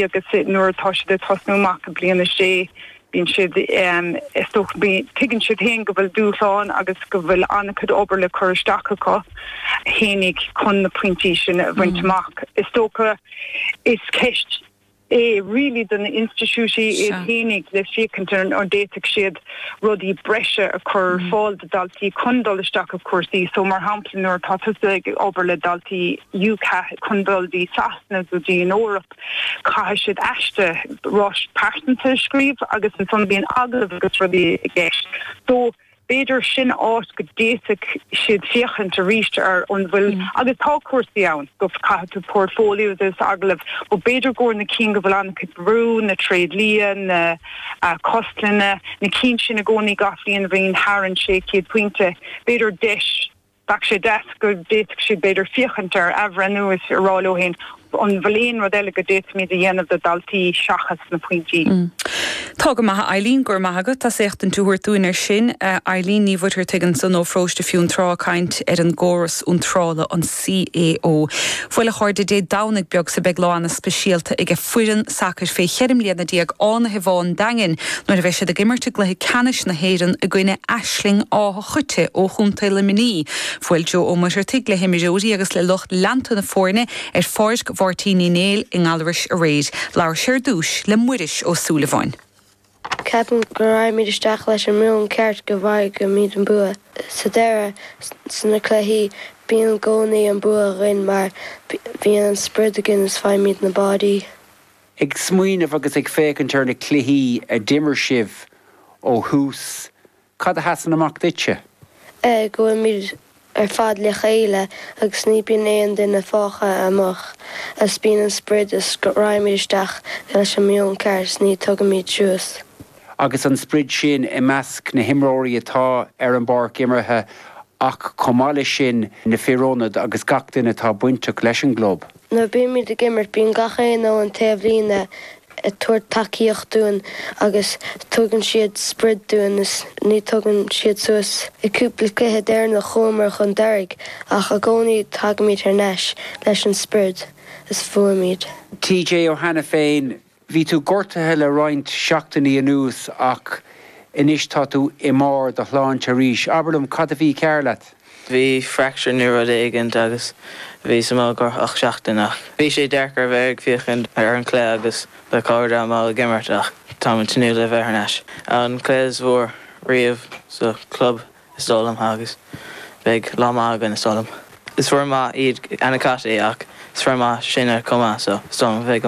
agus nuair atá siad ag tosnú amach i bliain a sé bíonn siad is dócha tuigeann siad féin go bhfuil dúshláin agus go bhfuil an-chuid obair le cur isteach acu fhéinig chun na pointí sin a bhaint amach. Is dócha is ceist é really do na institiúidí iad fhéinig le féachaint an bhféadfadh siad rudaí breise a cur ar fáil do daltaí chun dul isteach i cúrsaí so mar shampla nuair atá tusa ag obair le daltaí UCAS chun dul dtí Sasana go dtí an Eoraip caithfidh siad aiste ráiteas pearsanta a scríobh agus ansan bíonn agallamh agus rudaí i gceist so b'fhéidir sin áit go d'fhéadfadh siad féachaint arís ar an bhfuil agus tá cúrsaí ann go caithfidh tú portfóilió agus agallamh but b'fhéidir go bhfuil na cinn go bhfuil an-chuid brú an tréidlia na cógaslann na cinn sin i gcónaí gach bhliain a bhíonn thar an sé chéad pointe. B'fhéidir deis. Bheadh sé deas go bhféadfadh siad b'fhéidir féachaint ar athbhreithniú is a rá leo féin an bhfuil aon rud eile go d'fhéadfaimíd a dhéanamh do dhaltaí seachas na pointí. Tá go maith a Eileen, go raibh maith agat as éachtaint a thabhairt dúinn ar sin. Eileen Ní Mhuircheartaigh ansan ó Pharóiste Fionntrá, ag caint ar an gcóras iontrála, an. CAO. Bhuel a chairde, Dé Domhnaigh beag so beidh lá ana speisialta age foireann sacair fé cheithre bliana déag Fánaithe Bhá an Daingin nuair a bheidh siad ag imirt i gcluiche ceannais na hÉireann i gcoinne Aisling Átha Choite ó Chontae Luimnigh. Bhuail Joe Ó Muircheartaigh le himreoirí agus le lucht leanta na foirne ar Pháirc Mháirtín Uí Néill i nGallarus aréir. Labhair sé ar dtúis le Muiris Ó Súilleabháin. Ceapaim go raghaimid isteach leis an meon ceart go bhfaighimid an bua. Sa deireadh, sna cluichí, bíonn i gcónaí an bua againn mar bíonn an sprid againn is faighimid na báidí. Ag smaoineamh agus ag féachaint ar na cluichí a d'imir sibh ó thús Cad a sheasann amach duitse? é go bhfuilimid ar fad le chéile agus ní bíonn aon duine fágtha amach is bíonn an sprid is raghaimid isteach leis an meon ceart is ní tugaimid suas. Agus an sprid sin i measc na himreoirí atá ar an bpáirc imeartha ach chomh maith leis sin na fir ionad agus gach duine atá bainteach leis an gclub. Nuair a bímíd ag imirt bíonn gach éinne ón taobhlíne ag tabhairt tacaíocht dúinn agus tugann siad sprid dúinn is ní tugann siad suas. I gcúpla cluiche deireanach chuamar chun deiridh ach i gcónaí tagaimíd thar n-ais leis an sprid is bhuaimíd. TJ Ó hAiniféin, Bhí tú gortaithe le roinnt seachtainí anuas ach anois tá tú i mbarr do shláinte arís. Abair liom, cad a bhí cearr leat? Bhí fracture nó rud éigint agus bhíos i mo ghrotach seachtain ach bhí sé deacair a bheith ag féachaint ar an cluiche agus mo chairde amach ag imirt ach táim ag tnúth le bheith thar n-ais. An cluiche is mhór riamh sa chlub is dóigh liom agus beidh lá maith againn is dóigh liom. Is foireann maith iad Annacotty ach is foireann maith sinne chomh maith so is dóigh liom bheidh go maith.